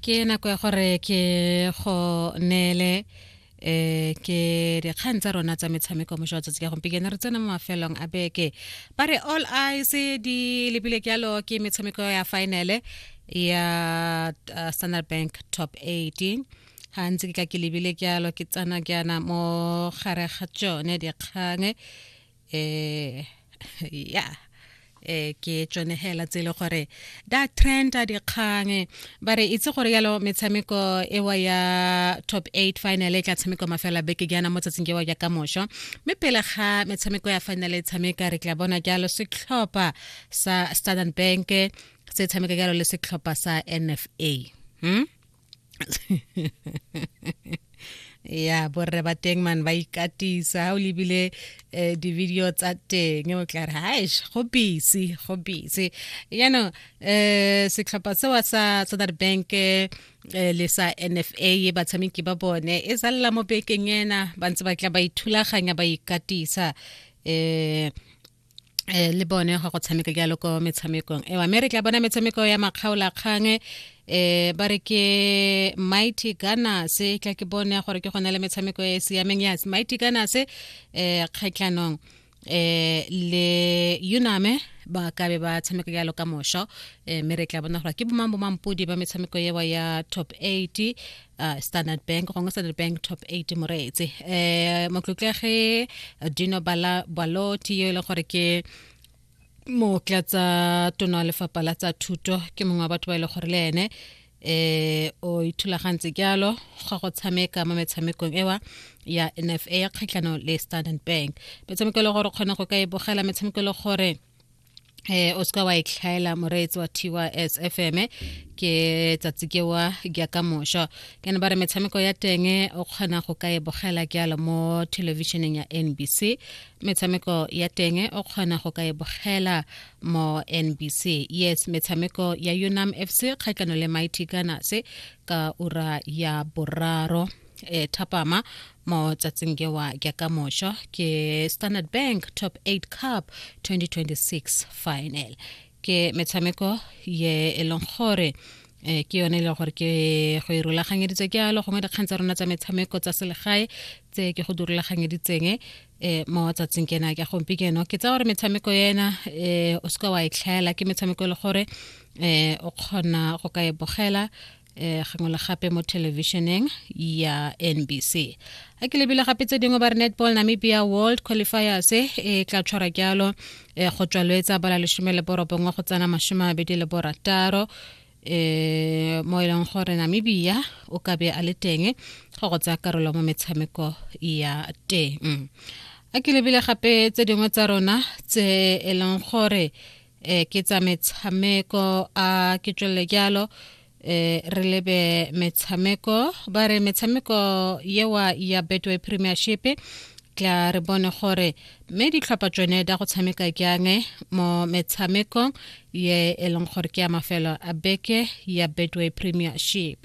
ke nako ya gore ke go neele eh ke dikgang tsa rona tsa metshameko mo jwa tsatsi ka gompieno re tsena mo mafelong a beke ba re all eyes di lebile ke yalo ke metshameko ya finale ya uh, standard bank top 18 ga ntse ke ka ke lebile ke yalo ke tsana ke yana mo gare ga tsone dikgang eh ya eh ke tsone hela tse le gore da trend a dikgang ba re itse gore yalo metshameko ewa ya top 8 final e tla tshameko mafela beke ke yana mo tsatsing ke wa ya ka mosho mme pele ga metshameko ya final e tshameka re tla bona jalo setlhopha sa Standard Bank se tshameka jalo le setlhopha sa NFA hmm? ya borre ba teng man ba ikatisa o lebile eh, di-video tsa teng o tla re haish go busy go busy yaanong um setlhopha sewa sa standard bank eh, le sa nfa batshameki ba bone e zalela mo bekeng ena ba ntse ba tla ba ithulaganya ba ikatisa um eh le bone ga go tshameka jalo ko metshamekong ewa mme re tla bona metshameko ya makgaola kgang eh ba re ke mighty gana se tla ke bone gore ke gona le metshameko e siameng ya mighty gana se eh kgatlhanong eh le uname ba ka be ba tshameka jalo ka mosho eh, mme re tla bona gore ke bomang bomampodi ba metshameko ewa ya top 8 uh, standard bank gongwe standard bank top eight moreetse um eh, motlotlege dino baloti yo e leng gore ke mookla tsa tono wa lefapha la tsa thuto ke mongwe wa batho ba e leng gore le ene eh o ithulagantse jalo ga go tshameka mo metshamekong ewa ya NFA ya kgatlhano le Standard Bank metshameko e le gore kgone go ka e bogela metshameko e le gore eh o ska wa itlhaela moreetsi wa tys fm ke tsatsi ke wa ke ka mosha ke ne ba re metshameko ya teng o kgona go ka e bogela ke ala mo televisioneng ya nbc metshameko ya teng o kgona go ka e bogela mo nbc yes metshameko ya unam fc kgatlano le mighty gunners ka ura ya boraro e thapama mo tsatsing kewa ke ka mosho ke standard bank top 8 cup 2026 final ke metshameko ye e leng gore eh, ke yone e leng gore ke go e rulaganyeditse ke alo gongwe dikgang tsa rona tsa metshameko tsa selegae tse ke go di rulaganyeditseng eh, mo tsatsing kena ke gompieno ke tsa gore metshameko ena eh, o seka wa e tlhaela ke metshameko e le gore eh, o kgona go ka e bogela eh gangwe le gape mo thelebišeneng ya nbc a ke lebile gape tse dingwe ba re netball namibia world qualifiers e eh, tla tshwara jalo eh, go tswalwetsa bala lesome le borobongwe go tsena masome a mabedi le borataro eh mo e leng gore namibia o ka be a le teng go go tsaya karolo mo metshameko ya teng a ke lebile gape tse dingwe tsa rona tse e leng gore eh ke tsa metshameko a ke tswelele jalo eh re lebe metshameko ba re metshameko yewa ya betway premiership tla re bone gore mme ditlhopha tsone da go tshameka jang mo metshamekong ye e leng gore ke ya mafelo a beke ya betway premiership